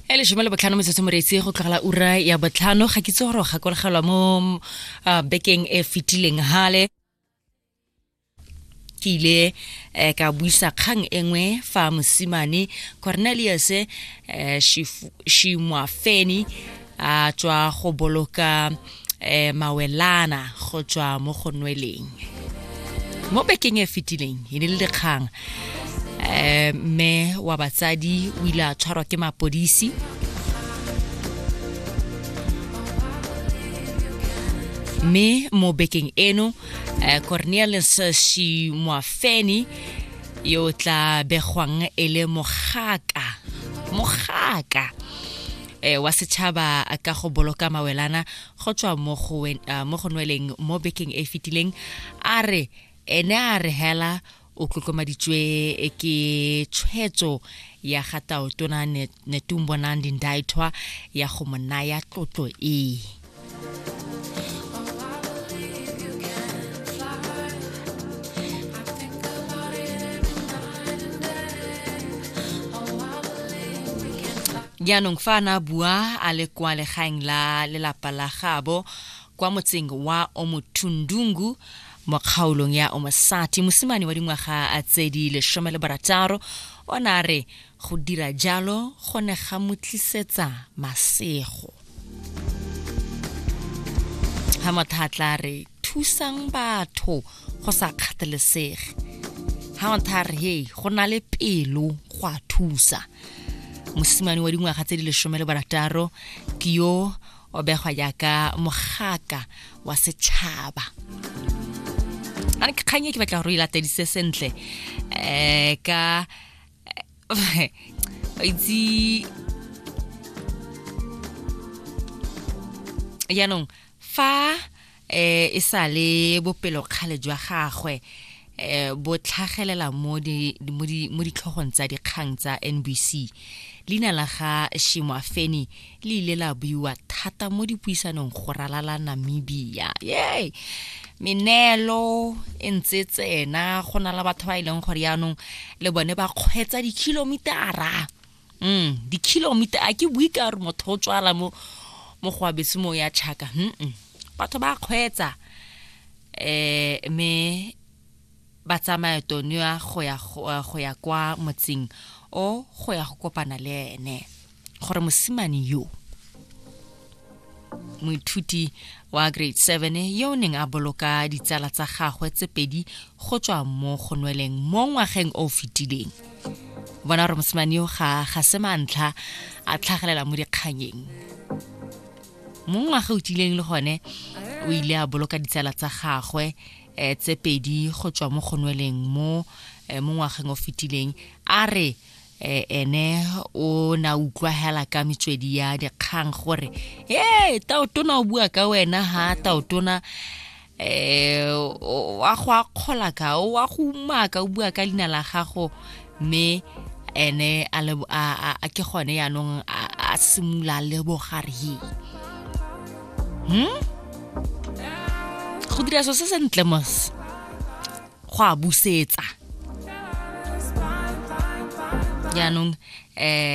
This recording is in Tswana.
e lesome le botlhano metsotso moreetsi go tlogela ura ya botlhano ga kitse gore gakologelwa mo uh, bekeng e fetileng hale ke ile eh, ka buisa kgang e nngwe fa mosimane cornelius eh, shimwafeni a tswa go boloka eh, mawelana go tswa mo go nweleng mo bekeng e fetileng e ne le dikgang eh, mme wa batsadi o ile a tshwarwa ke mapodisi mme mo bekeng eno eh, cornelius shimoafeni yo tla begwang e le mogaka mogaka e, wa setšhaba ka go boloka mawelana go tswa mo go eh, nweleng mo bekeng e e fetileng a re ene a re hela o tlotlomaditswe eh, ke tshwetso ya ga taotona netumbonang dindaithwa ya go mo naya tlotlo ee jaanong fa a ne a bua a le kwa legaeng la lelapa la gabo kwa motseng wa omothundungu mo kgaolong ya omasati mosimane wa dingwaga tse di lesome le barataro o ne a re Go dira jalo go ne ga mo tlisetsa masego. Ga motha tla re thusang batho go sa kgathalesege. Ga motha re hey go na le pelo go a thusa. Mosimane wa dingwaga tse di lesome le barataro ke yo o begwa jaaka mogaka wa setšhaba a ke kgang e ke batla gore o e latedise sentle um ka itse jaanong fa eh e sale bopelo kgale jwa gagwe eh bo tlhagelela mo di mo di mo ditlhogong tsa dikgang tsa NBC leina la ga Shimwafeni le ile la buiwa thata mo dipuisanong go ralala namibia yay meneelo e ntse tsena go na le batho ba e leng gore yaanong le bone ba kgwetsa dikhilomitara mm dikhilomitara a ke bue ka gore motho o tswala mo mo go abetse mo ya chaka mm batho ba kgwetsa eh me ba tsamaya tonia go ya go ya kwa motseng o go ya go kopana le ene gore mosimane yo moithuti wa grade 7 yo o neng a boloka ditsala tsa gagwe tse pedi go tswa mo go nweleng mo ngwageng o fetileng bona gore mosimane yo ga ga se mantlha a tlhagelela mo dikganyeng mo ngwaga o tileng le gone o ile a boloka ditsala tsa gagwe um tse pedi go tswa mo gonweleng mo um mo ngwageng o fetileng a re um ene o na utlwa hela ka metswedi ya dikgang gore e taotona o bua ka wena ha taotona um wa go akgola ka wa go umaka o bua ka leina la gago mme ene a le a a ke gone yaanong a simula le bogare he hmm go dira so se sentle mos go a busetsa yaanong eh